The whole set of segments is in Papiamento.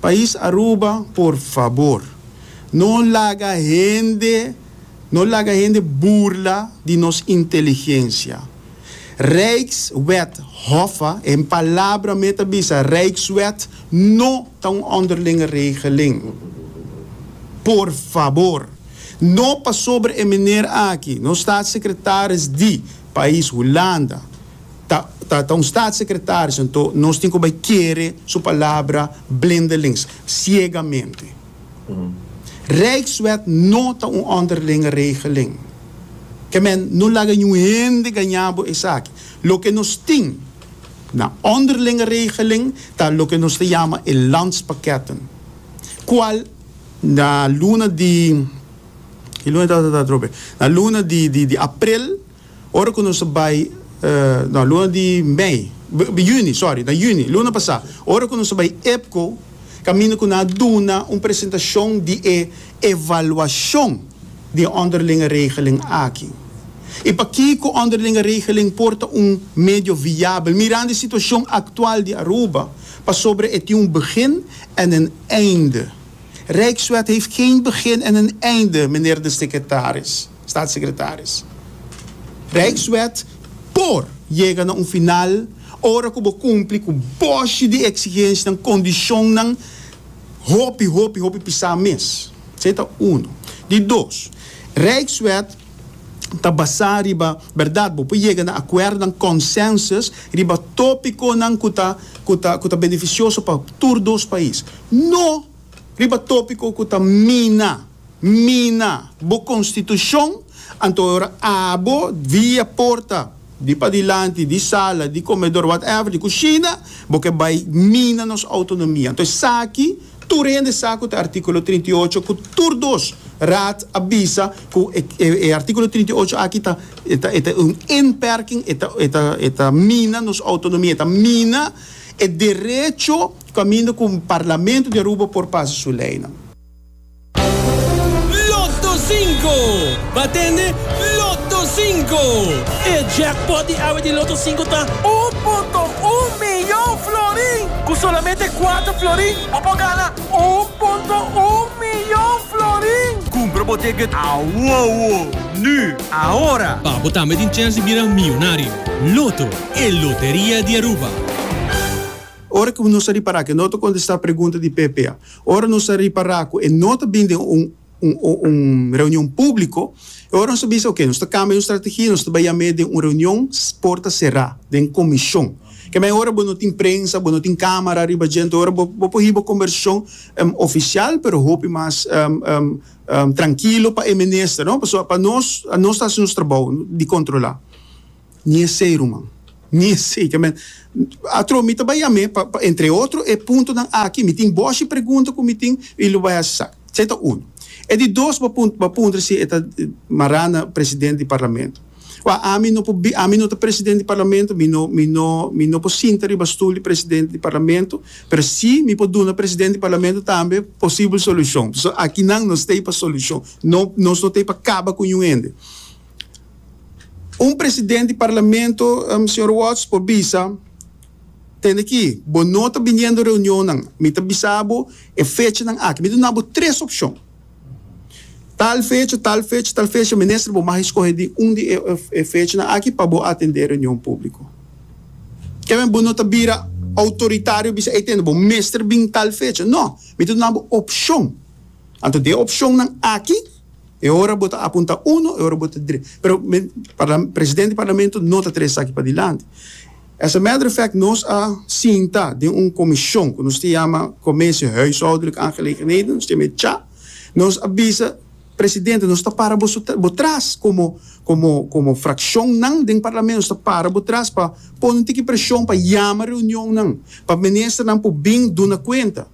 Pais Aruba por fabor no laga hende no laga hende burla di nos inteligencia. Rijkswet Hoffa en palabra me ta bisa Rijkswet no ta un onderlinge regeling. Por fabor no pasobra e meneer aki no Staatssecretaris di pais Hulanda, Ta ta ta un staatssecretaris anto nos tin cu bay kere su palabra blindelings, ciegamente. Rijkswet no ta un onderlinge regeling. Ke men no laga niun hende gaña bo esaki. Loke nos tin na onderlinge regeling ta loke nos ta yama e landspakketten, cual na luna di, ki luna e ta ta ta atrobe? Na luna di di di april. Ora ku nos a bai, na luna di mei, juni, sòri, na juni, luna pasá, ora ku nos a bai EPCO, kaminda ku nan a duna un presentashon di e evaluashon di e ònderlinge regeling aki i pakiko ònderlinge regeling por ta un medio viabel mirando e situashon aktual di Aruba, pasobra e tin un begin en een einde. Rijkswet heeft geen begin en een einde, meneer de secretaris. Staatssecretaris. Rijkswet por yega na un final ora ku bo kumpli ku boshi di eksigensnan, kondishonnan, hopi, hopi, hopi pisá mes. Esei ta uno. Di dos, Rijkswet ta basá riba bèrdat. Bo por yega na akuerdonan, consensus, riba tópikonan ku ta ku ta ku ta benefisioso pa tur dos pais. No riba tópiko ku ta mina. mina bo konstitushon, anto e ora abo via porta di padilanti di sala di komedor whatever di kushina bo ke bai mina nos outonomia. Anto esaki tur hende sa ku ta artikulo trinta i ocho ku tur dos Raad a bisa ku e artikulo trinta i ocho aki ta e ta un inperking e ta e ta e ta mina nos outonomia e ta mina e derecho kaminda ku Parlamento di Aruba por pasa su leinan. Lotto Cinco! Ba tende Lotto Cinco! E jackpot di awe di Lotto Cinco ta un punto un miyon florin! Ku solamente kuater florin bo por gana un punto un miyon florin! Kumpra bo ticket awowo! Nu! Ahora! Pa bo tambe tin chèns di bira miyonario! Lotto, e loteria di Aruba! Ora ku nos a ripará ku no ta kontestá pregunta di ppa. Ora nos a ripará ku e no ta bini den un un reunion públiko, e ora nos a bisa, oke, nos ta kambia nos strategia, nos ta bai yam'é den un reunion porta será, den komishon. Kema e ora bo no tin prensa, bo no tin kámara riba djent, e ora bo por hiba kombersashon ofisial, pero hopi mas trankilo pa e minister, no? Pasobra pa nos, nos ta hasi nos trabou di kontrolá. Ni esei, ruman. Ni esei. Ke men, atro mi ta bai yam'é pa, pa entre otro e puntonan aki. Mi tin boshi pregunta ku mi tin i lo bai hasi sa. Esei ta uno. E di dos bo bo a puntra si e ta mará na presidente di parlamento. Wak, ami no por bi, ami no ta presidente di parlamento, mi no, mi no, mi no por sinta riba stul di presidente di parlamento, pero si mi por duna presidente di parlamento tambe posibel solushon. So, aki nan no stay pa solushon. No, nos no t'ei pa kaba ku niun hende. Un presidente di Parlamento, señor Watts, por bisa, Tende aki, bo no ta biniendo reunionnan. Mi ta bisa bo e fechanan aki. Mi ta duna bo tres opcion. Tal fecha, tal fecha, tal fecha. Minister, bo mag escoge di un di e fechanan aki pa bo atende e reunion publico. Ke men bo no ta bira autoritario bisa, Ey tende, bo mester bin tal fecha. No, mi ta duna bo opcion. Anto di e opcionnan aki. E ora bo ta apunta uno, e ora bo ta dre. Pero mi parla, presidente di parlamento no ta trae esaki padilanti. As a matter of fact, nos a sinta den un commision cu nos ta yama Commissie Huishoudelijke Aangelegenheden, nos ta yama e cha. Nos a bisa presidente, nos ta para bo su, bo tras como, como, como fraccionnan den parlamento, nos ta para bo tras pa pone un tiki presion pa yama reunionnan, pa ministernan por bin duna cuenta.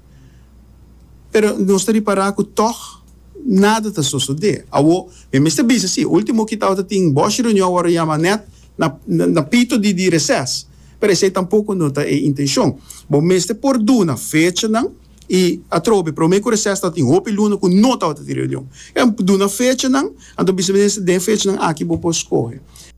Pero nos ta ripara cu toch, Nada ta sosodé. Awor, mi mester bisa sí, último ki tabatin tin bòshi reunion ora yama nèt na na pito di di recess. Pero esei tampoko no ta e intenshon. Bo mester por duna fechanan i atrobe promé ku recess tabatin hopi luna ku no tabatin tin reunion. Duna fechanan, anto bisa minister den fechanan aki bo por skohe.